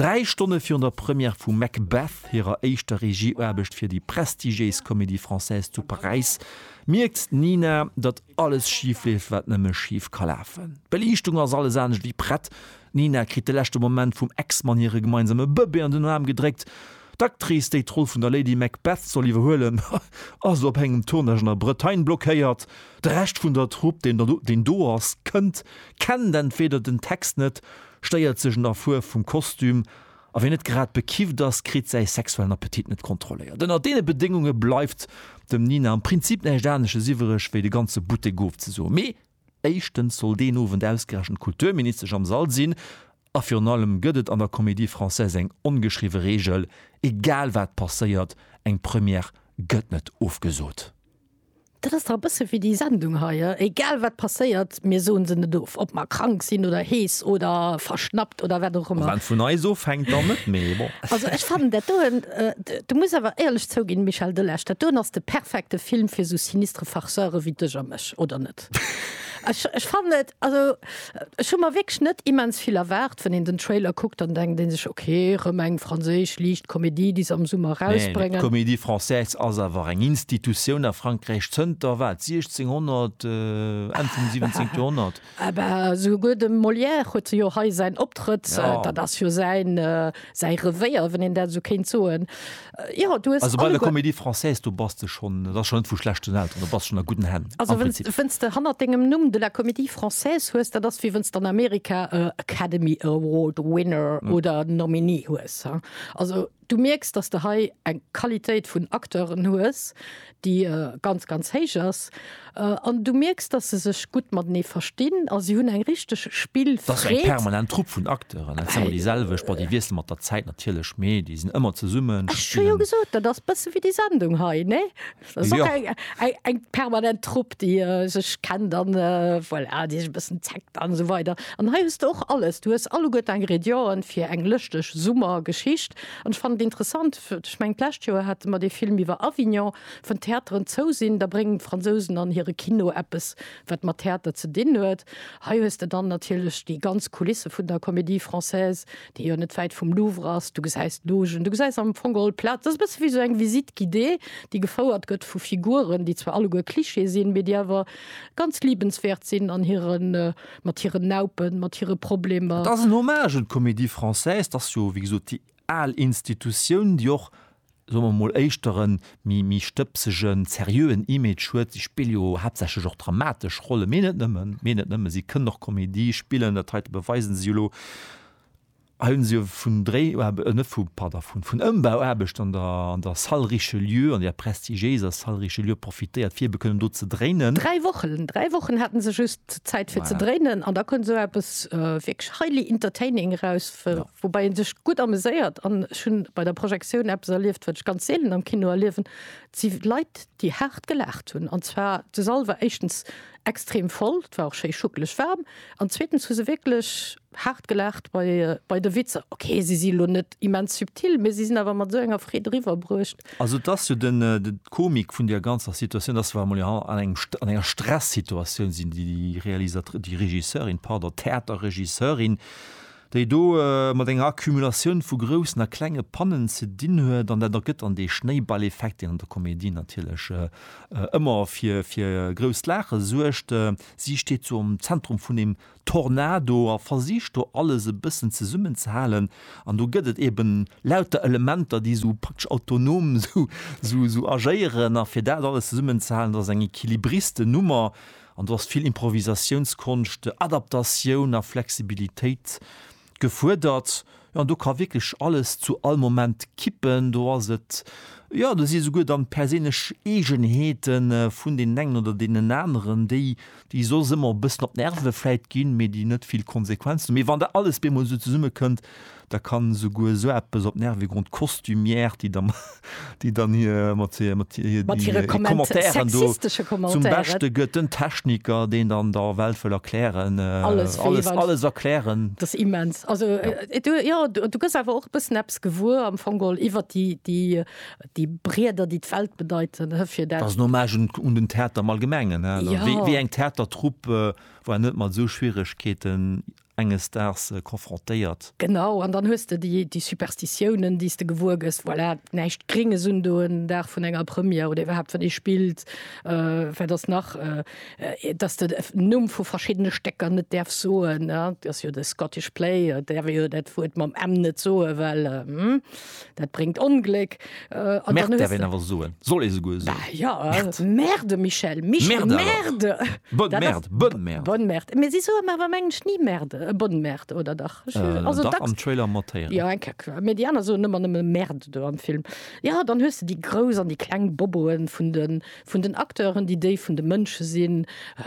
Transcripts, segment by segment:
Dräi Stonne virun der Première vu Macbeth, hirer éischter Regieaarbecht fir déi prestigiéis Comédie-Française zu Paräis, mierkt d'Nina, datt alles schif leeft, wat nëmme schif ka lafen. D'Beliichtung ass alles anescht ewéi prett, d'Nina kritt de leschte Moment vum Ex-Mann hire gemeinsame Bëbee an den Aarm gedréckt, d'Actrice, déi d'Roll vun der Lady Macbeth soll iwwerhuelen, ass op engem Tournage an der Bretagne blockéiert, de Rescht vun der Trupp, deen do ass, kënnt, kennt entweeder den Text net Stéiert sech un der Fuerf vum Kostüm a wien net grad bekifft ass, kritt säi sexuellen Appetit net kontrolléiert. Ënnert deene Bedéngunge bleift dem Nina am Prinzip näischt anesches iwwereg, wéi de ganze Buttek ofzesoen. Mee éischtens soll deen Owend ausgerechent d'Kulturministesch am Sall sinn a virun allem gëtt et an der Comédie Française eng ongeschriwwe Reegel, egal wat passéiert, eng Première gëtt net ofgesot. Dat ass dach e bësse wéi déi Sendung hei, egal wat passéiert, mir soen se net of, ob mer krank sinn oder hees oder verschnappt oder wat och ëmmer. Wann et vun eis ofhänkt, dann net méi, bon. Also ech fannen dat doen, du muss awer éierlech zouginn, Michel Delage, dat doen ass de perfekte Film fir sou sinistre Farceure wéi dech a mech, oder net? Ech ech fannen et also ech hu mer wierklech net immens vill erwaart, wann een den Trailer kuckt, dann denkt een sech ok rëm eng franséisch liicht Komedie déi se am Summer rausbréngen. Nee, d'Comédie française ass awer eng Institutioun a Frankräich zënter wat 1600, Enn vum 17. Joerhonnert. Ah bah esouguer de Molière huet se jo hei säin Optrëtt, dat ass jo säin säi Revéier, wann een dat esou kéint soen. Ja, du hues also bei der Comédie Française do bass de schonn, dat ass schonn net vu schlechten Elteren, do bass schonn a gudden Hänn. Also wéinst de hannert dengem Numm de la Comédie Française hues, dat ass wéi wéinst an Amerika e Academy Award Winner oder Nominee hues. Also du mierks, datt de hei eng Qualitéit vun Acteuren hues, déi ganz ganz héich ass an du mierks, datt se sech gutt matenee verstinn a si hunn eng richteg Spillfreed. Dat ass eng permanent Trupp vun Acteuren, dat si ëmmer déi selwecht, bon déi wiessele mat der Zäit natierlech, mee déi sinn ëmmer zesummen. Ech hu jo gesot, dat ass e bësse wéi déi Sendung hei, ne? Dat ass och eng eng permanent Trupp, déi sech kennt an voilà, déi sech e bëssen zeckt an esou weider. An hei hues de och alles, du hues alleguerte Ingrédienten fir eng lëschteg Summergeschicht an ech fannen et interessant, Ech mengen d'lescht Joer hate mer dee Film iwwer Avignon. Wann d'Theateren zou sinn, da bréngen d'Fransousen an hire Kino eppes, wat mat Theater ze dinn huet. Hei hues de dann natierlech déi ganz Kulisse vun der Comédie Française, déi jo net wäit vum Louvre ass. Du gesäis d'Logen, du gesäis am Fong geholl d'Plaz. Et ass e bësse wéi esou eng Visite guidée, déi gefouert gëtt vu Figuren, déi zwar alleguer Klischee sinn, mee déi awer ganz liebenswäert sinn an hiren, mat hiren Naupen, mat hire Problemer. Et ass en Hommage un d'Comédie Française. Et ass jo, wéi gesot, déi al Institutioun, déi och, soe mer emol, éischter e méi stëbsegen, seriöen Image huet. Si spille jo haaptsächlech och dramatesch Rollen, mee net nëmmen, mee net nëmmen, si kënnen och Komedie spillen, dat heite beweisen si jo elo. Hei hu si jo vun Dréi, net vu, pardon, vun Ëmbauaarbechten an der, an der Salle Richelieu, an där prestigiéiser Salle Richelieu profitéiert, fir ebe kënnen do ze dréinen. Dräi Wochen, dräi Wochen haten se just Zäit, fir ze dréinen, an da koum esou eppes wierklech highly entertaining eraus, Woubäi een sech gutt ameséiert an ech hunn bei der Projektioun eppes erlieft, wat ech ganz seelen am Kino erliewen, et si Leit déi haart gelaacht hunn. An zwar de Sall war éischtens extrem voll, et war och schéi schuckeleg waarm, an zweetens hu se wierklech haart gelaacht bei bei de Witzer. Ok, si si lo net immens subtil, mee si sinn awer mat esou enger Freed eriwwer bruecht. Also et ass jo de d'Komik vun där ganzer Situatioun, dass wa mer jo an engem an enger Stressituatioun sinn, déi Realisatr déi Regisseurin, pardon, Theaterregisseurin, déi do mat enger Accumulatioun vu groussen a klenge Pannen ze dinn huet, an dat ergëtt dann dee Schnéiballeffekt, deen an der Komedie natierlech ëmmer fir grousst Laache suergt. Si steet sou am Zentrum vun engem Tornado a versicht do alles e bëssen zesummenzehalen, an do gëtt et eben lauter Elementer, déi sou praktesch autonom sou agéieren, a fir dat alles zesummenzehalen, dat ass eng Equilibristennummer, An do ass vill Improvisatiounskonscht, Adaptatioun a Flexibilitéit gefuerdert. Jo, an do ka wierklech alles zu all Moment kippen. Do ass et, jo, do si souguer dann d'perséinlech Eegenheete vun deenen engen oder deenen aneren, déi, déi soss ëmmer e bëssen op d'Nerve vläit ginn, mee déi net vill Konsequenzen hunn. Mee wann dat alles bemol esou zesummekënnt, Da kann esouguer esou eppes op d'Nerve goen, d'Costumière, déi da déi dann hir mat hir mat hir mat hire Commentairen do zum Beschte gëtt, den Techniker, deen dann der Welt wëll erklären, alles alles erklären. Dat ass immens. Also jo, du gëss awer och e bëssen eppes gewuer am Fong geholl iwwer déi déi déi Brieder, déi d'Welt bedeiten fir dat. Dat ass en Hommage un den Theater am Allgemengen, wéi eng Theatertrupp, wou een net mat esou Schwieregkeeten enges Daags konfrontéiert. Genau, an dann hues de déi Superstitiounen, déi s de gewuer gëss, voilà, näischt Grénges un do en Dag vun enger Première oder iwwerhaapt, wann ee spillt, wat ass nach, dass de den Numm vu verschiddene Stécker net däerfs soen, dat ass jo de Scottish Play, et däerf ee jo dat Wuert mam m net soen, well hm. dat bréngt Ongléck. Äh, Merde däerf een awer soen, soll ee souguer soen. Bah, ja, Merde, Merde Michel, Michel, Merde! Bonne Merde, Bonne Merde. Bonne Merde. Mee si soe mer awer am Englesch ni Merde, äh, Bonne Merde, oder dach? Ech, äh, also dach, dacks. Am Trailer mat héieren. Ja, eng Kéck. Mee déi aner soen ëmmer nëmme Merde do am Film. Ja, dann hues de déi grouss an déi kleng Boboen vun den, vun den Acteuren, déi déi vun de Mënsche sinn.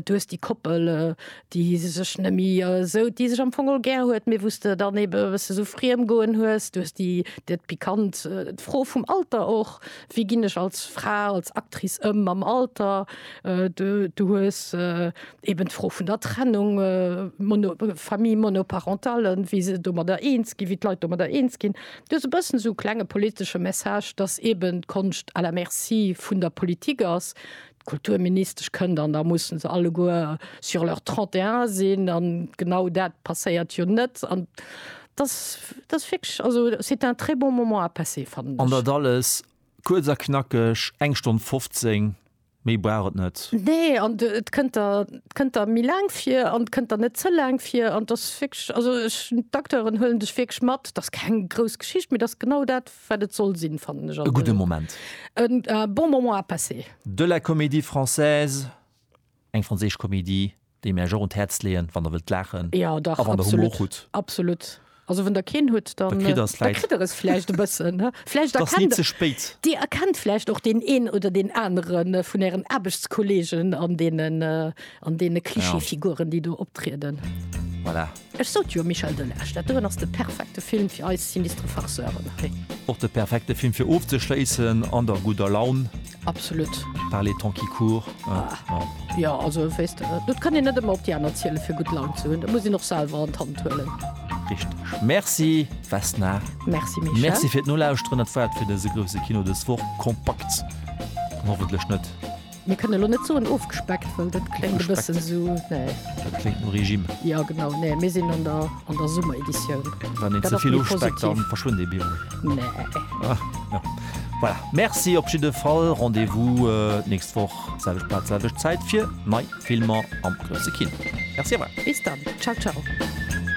Du hues déi Koppel, déi se sech nëmme esou, déi sech am Fong och gär huet, mee wou s de dann ebe e bësse sou friem goen hues. Du hues déi, dat pikant, d'Fro vum Alter och, wéi ginn ech als Fra, als Actrice ëm mam Alter? Du, du hues eben d'Fro vun der Trennung, mono, Famille monoparentale, wéi se domadder eens ginn, wéi d'Leit domadder eens ginn. Du hues e bëssen sou klenge politesche Message, datt eben d'Konscht à la merci vun der Politik ass, D'Kulturministesch kënnt an da musse se alleguer sur leurs 31 sinn an genau dat passéiert jo net an dass dass wierklech also c'est un très bon moment à passer fannen ech. An dat alles kuerz a knackeg, eng Stonn 15, méi brauch et net. Nee, an et kënnt der kënnt der méi laang vir an et kënnt der net ze laang vir an dass wierklech also ech d'Acteuren huelen dech wierklech mat, dass keng grouss Geschicht, mee dass genau dat, Wat et soll sinn, fannen ech. E gudde Moment. E bon moment à passer. De la Comédie Française, eng franséisch Komedie, déi mir Iech och un d'Häerz leeën, wann Der wëllt laachen a wann Der Humor hutt. Absolut. Also wann Der keen hutt, da kritt Der es vläicht. Da kritt Der es vläicht e bëssen. Vläicht erkennt. Et ass ni ze spéit. Dir erkennt vläicht och deen een oder deen anere vun Ären Aarbechtskollegen an deenen Klischeefiguren, déi do optrieden. Voilà. Ech sot jo, Michel Delage, dat doen ass de perfekte Film fir eis sinistre Farceuren hei. Och de perfekte Film fir ofzeschléissen an der gudder Laun. Absolut. Par les temps qui courent. Jo, also weess de, dat kann een net ëmmer op déi aner zielen, fir gutt Laun ze hunn. Dat muss een och selwer an d'Hand huelen. Richteg. Merci Vesna. Merci Michel. Merci fir d'Nolauschteren. Dat war et fir dëse Grousse Kino dës Woch. Kompakt an hoffentlech net. Mir kënne lo net soen ofgespeckt, well dat kléngt e bëssen esou, nee. Dat kléngt no Regime. Jo, genau, nee, mir sinn an der, an der Summereditioun. Wann een ze vill ofspeckt, da verschwënnt ee Biwel. Nee. Jo. Voilà, Merci op jidde Fall. Rendez-vous d'nächst Woch, selwecht Plaz, selwecht Zäit fir nei Filmer am grousse Kino. Merci awer. Bis dann. Ciao, ciao.